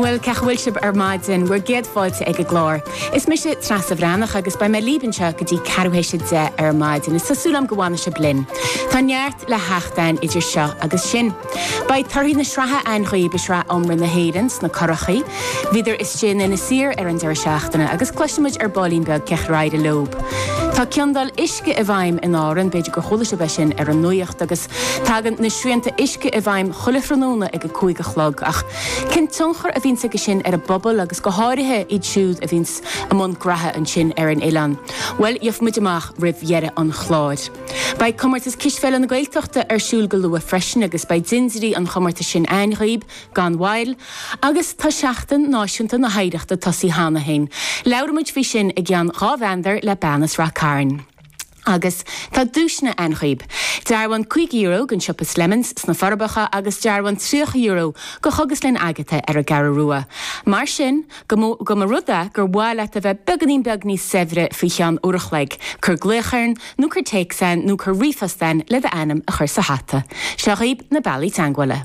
Bhuel, cé chaoi a bhfuil sibh ar maidin? Bhur gcéad fáilte ag an gclár. Is mise Treasa Bhreathnach agus beidh mé libh anseo go dtí ceathrú théis a deich ar maidin is tá súil agam go bhfanfaidh sibh linn. Tá neart le theacht ann idir seo agus sin. Beidh torthaí na sraithe ann dhaoibh i Sraith Iomartha na hÉireann sna curachaí. Bhíodar istigh in Inis Oírr ar an deireadh seachtaine agus cloisfidh muid ar baillín beag cé chaoi ar éirigh leob. Tá ciondáil uisce i bhfeidhm in Árainn, b'fhéidir gur chuala sibh é sin ar an nuacht, agus. Tagann na srianta uisce i bhfeidhm chuile thráthnóna ag a cúig a chlog ach cén tionchar a bhíonns ag sin ar an bpobal agus go háirithe iad siúd a bhíonns i mbun graithe ansin ar an oileán? Bhuel gheofaidh muid amach roimh dheireadh an chláir. Beidh Comórtas Cispheile na Gaeltachta ar siúl go luath freisin agus beidh dintiúirí an chomórtais sin ann dhaoib gan mhoill agus tá Seachtain Náisiúnta na hOidhreachta tosaí cheana féin. Labhraimid faoi sin i gceann dhá mheandar le bean as Rath Cairn. Agus tá duaiseanna ann dhaoib. Dearbhán caoga euro gon siopa Slemons sna Forbacha agus dearbhán triocha euro go Chógaslann Agatha ar an gCeathra Rua. Mar sin, go, más rud é gur mhaith leat a bheith beagainín beag níos saibhre faoi cheann uair a chloig, cur glaoch orainn nó cur téacs againn nó cur ríomhphost againn le d'ainm a chur sa hata. Seo dhaoib na bealaí teagmhála.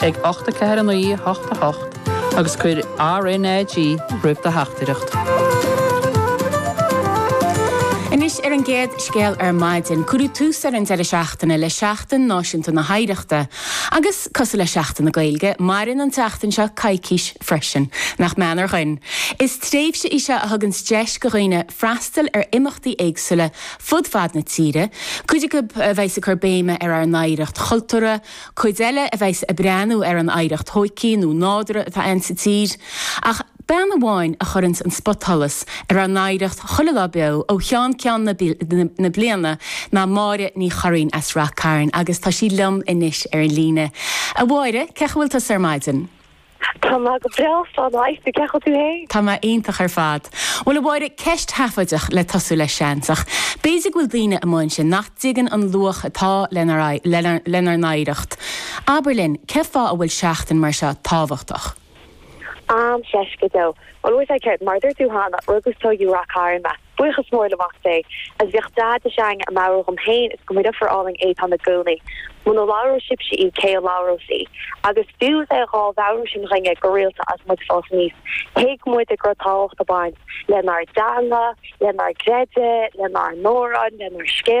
ag 849 88 agus cuir RnaG roimh do theachtaireacht. Anois ar an gcéad scéal ar maidin. Cuireadh tús ar an deireadh seachtaine le Seachtain Náisiúnta na hOidhreachta. Agus, cosúil le Seachtain na Gaeilge, maireann an tseachtain seo coicís freisin. Nach méanar dhúinn! Is tréimhse í seo a thuganns deis do dhaoine freastal ar imeachtaí éagsúla fud fad na tíre, cuid acu a bheidheas ag cur béime ar ár n-oidhreacht chultúrtha, Cuid eile a bheidheas ag breathnú ar an oidhreacht thóigthí nó nádúrtha atá ann sa tír. Ach bean amháin a chuireanns an spotsholas ar ár n-oidhreacht chuile lá beo ó cheann ceann na bliana ná Máire Ní Churraoin as Rath Cairn agus tá sí liom anois ar an líne. A Mháire, cé chaoi a bhfuil tusa ar maidin? Tá mé go breá, slán a Aifric, cé chaoi a bhfuil tú fhéin? Tá mé iontach ar fad. Bhuel a Mháire, ceist sheafóideach le tosú leis seans, ach b'fhéidir go bhfuil daoine amuigh ansin nach dtuigeann an luach atá lenár n-oidhreacht. Abair linn, cén fáth a bhfuil seachtain mar seo tábhachtach? Am seisce dó. Bhuel, a bhfuil sé ceart, mar a dúirt tú cheana, rugadh is tóigeadh i Rath Cairn mé. Buíochas mór le Mac Dé, agus bhíodh Daid de shíor á mheabhrú dhom féin is do mo dheirfiúr álainn Étáin i gcónaí. Muna labhróidh sibhse í, cé a labhrós í? Agus fiú is é dhá mheabhrú sin dhainne go rialta is muid ag fás aníos, thuig muide go raibh tábhacht ag baint lenár dteanga, lenár gcreideamh, lenár n-amhráin, lenár scéalta.